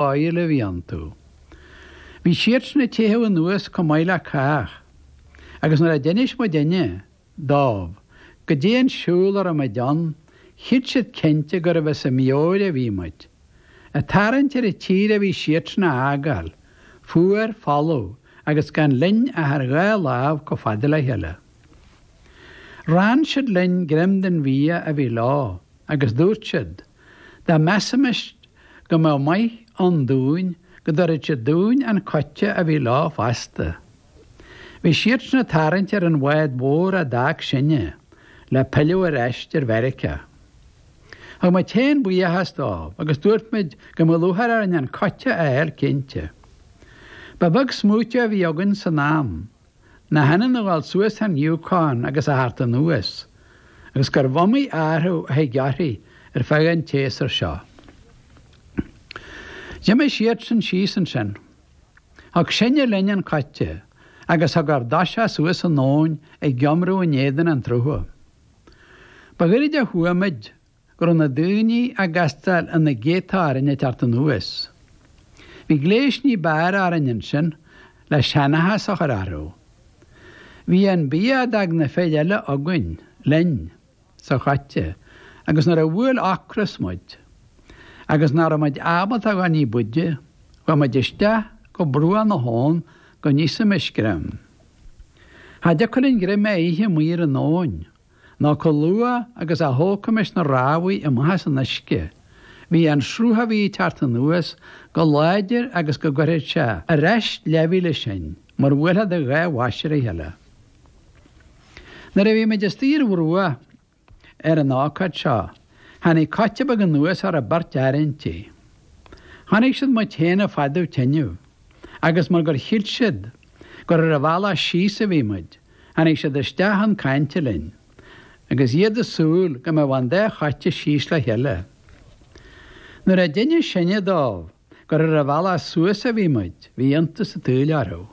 áíl a bhí iontu. Bhí siadsan ag teitheadh anuas chomh maith le cách, agus nuair a d'inis muidinne dóibh goidé an siúl a raibh muid ann, chreid siad cinnte gurbh as ár meabhair a bhí muid. Ag tarraingt ar an tír a bhí siadsan a fhágáil, fuar, folamh, agus gan linn ach ár dhá lámh chomh fada le chéile. Rann siad linn greim den bhia a bhí leo, agus dúirt siad, Dá measaimis go mbeadh maith ann dúinn go dtabharfadh siad dúinn an coite a bhí leo fosta. Bhí siadsan ag tarraingt ar an bhád mhór a d'fhág sinne le pilleadh ar ais ar Mheiriceá. Thug muid féin buíochas dóibh agus dúirt muid go mbeadh lúcháir orainn an coite a fháil cinnte. Ba bheag smaointe a bhí againn san am. nach ionann a dhul suas an Yukon agus a theacht anuas, agus gurbh iomaí athrú a thig uirthi ar feadh an tséasúir seo. D'imigh siadsan síos ansin. Thug sinne linn an coite agus thug ár dtoiseach suas an abhainn ag iomramh in éadan an tsrutha. Ba ghairid a chuaigh muid go raibh na daoine ag castáil ina gcéadta orainn ag teacht anuas. Bhí gléas ní b'fhearr orainn ansin le seanchas a chur orthu. Bhí an bia a d'fhág na fir eile againn, linn, sa choite agus nuair a bhuail ocras muid agus nach raibh muid ábalta a dhul ní b'fhaide, chuaigh muid isteach go bruach na habhann go n-íosaimis greim. Cha dtiocfadh linn greim a ithe amuigh ar an abhainn. nó chomh luath agus a thógfaimis na rámhaí amach as an uisce, bhí an sruth a bhí ag teacht anuas chomh láidir agus go gcuirfeadh sé ar ais leathmhíle sinn mar bhuailfeá do dhá bhois ar a chéile. Nuair a bhí muid istigh ar an bhruach ar an ócáid seo, tháinig coite beag anuas a raibh beirt fhear inti. Chonaic siad muid féin ag fadú teineadh, agus mar gur shíl siad gur ar an bhealach síos a bhí muid, Tháinig siad isteach chun cainte linn, agus iad ag súil go mbeadh an dá choite síos le chéile. Nuair a d'inis sinne dóibh gur ar an bhealach suas a bhí muid, bhí iontas an tsaoil orthu.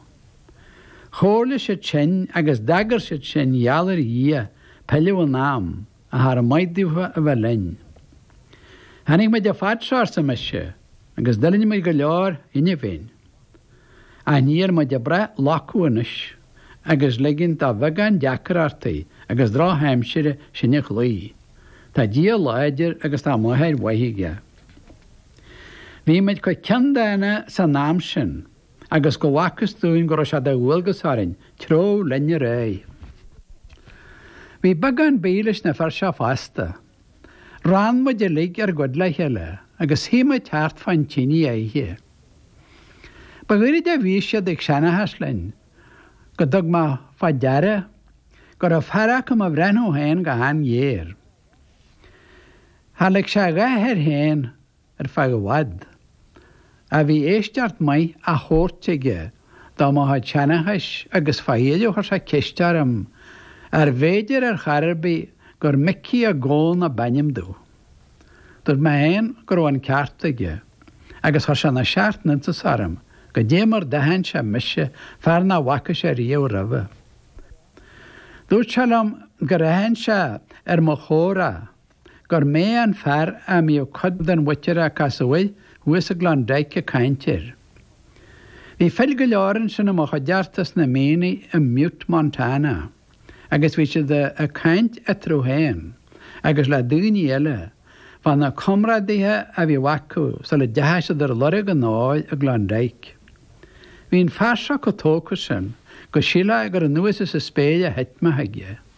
Chomhairligh siad sinn agus d'agair siad sinn gheall ar Dhia pilleadh in am. ach char mhaith daofa a bheith linn. Tháinig muid an fad seo, arsa mise, agus d'fhulaing muid go leor cheana féin. Ach níl muid ag brath loiceadh anois agus ligint do bheagán deacrachtaí agus drochaimsire sinn a chloí. Tá Dia láidir agus tá máthair mhaith aige. Bhí muid chomh ceanndána san am sin. agus go bhfacthas dúinn go raibh sé de dhualgas orainn treabhadh linn ar aghaidh. Bhí beagán bídh leis na fir seo fosta. Rann muid uilig ar gcuid le chéile agus shuigh muid thart fán tinidh á ithe. Ba ghairid a bhí siad ag seanchas linn go dtug mé fá deara go raibh fear acu do mo bhreathnú féin go han-ghéar. Char lig sé a dhath air féin ar feadh i bhfad. Ach bhí éisteacht maith á thabhairt aige do mo chuid seanchais agus fá dheireadh chuir sé ceist orm arbh fhéidir ar chor ar bith gur Micí Mac Gabhann ab ainm domh. Dúirt mé féin go raibh an ceart aige, agus chuir sé na seacht n-iontas orm goidé mar d'aithin sé mise, fear nach bhfaca sé riamh roimhe. Dúirt sé liom gur aithin sé ar mo chomhrá gur mé an fear a mbíodh cuid den mhuintir a casadh air thuas i gClondyke ag caint air. Bhí fir go leor ansin i mo chuideachta sna mianaigh i mButte, Montana, agus bhí siad ag caint eatarthu féin agus le daoine eile fá na comrádaithe a bhíodh acu sula deachaidh siad ar lorg an óir i gClondyke. Bhí an fear seo chomh tógtha sin go sílfeá gur anuas as an spéir a thit mé chuige.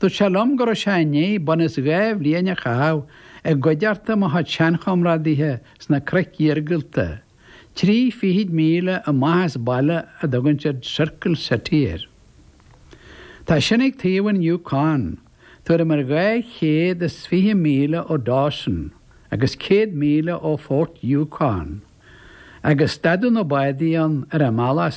Dúirt sé liom go raibh sé i ndiaidh bunús dhá bhliain a chaitheamh i gcuideachta mo chuid seanchomrádaithe sna cnoic iargúlta, trí fichid míle amach as baile a dtugann siad Circle City air. Tá sin ag taobh an Yukon, tuairim ar dhá chéad is fiche míle ó Dawson agus céad míle ó Fort Yukon, agus stadadh na bádaí ann ar an mbealach is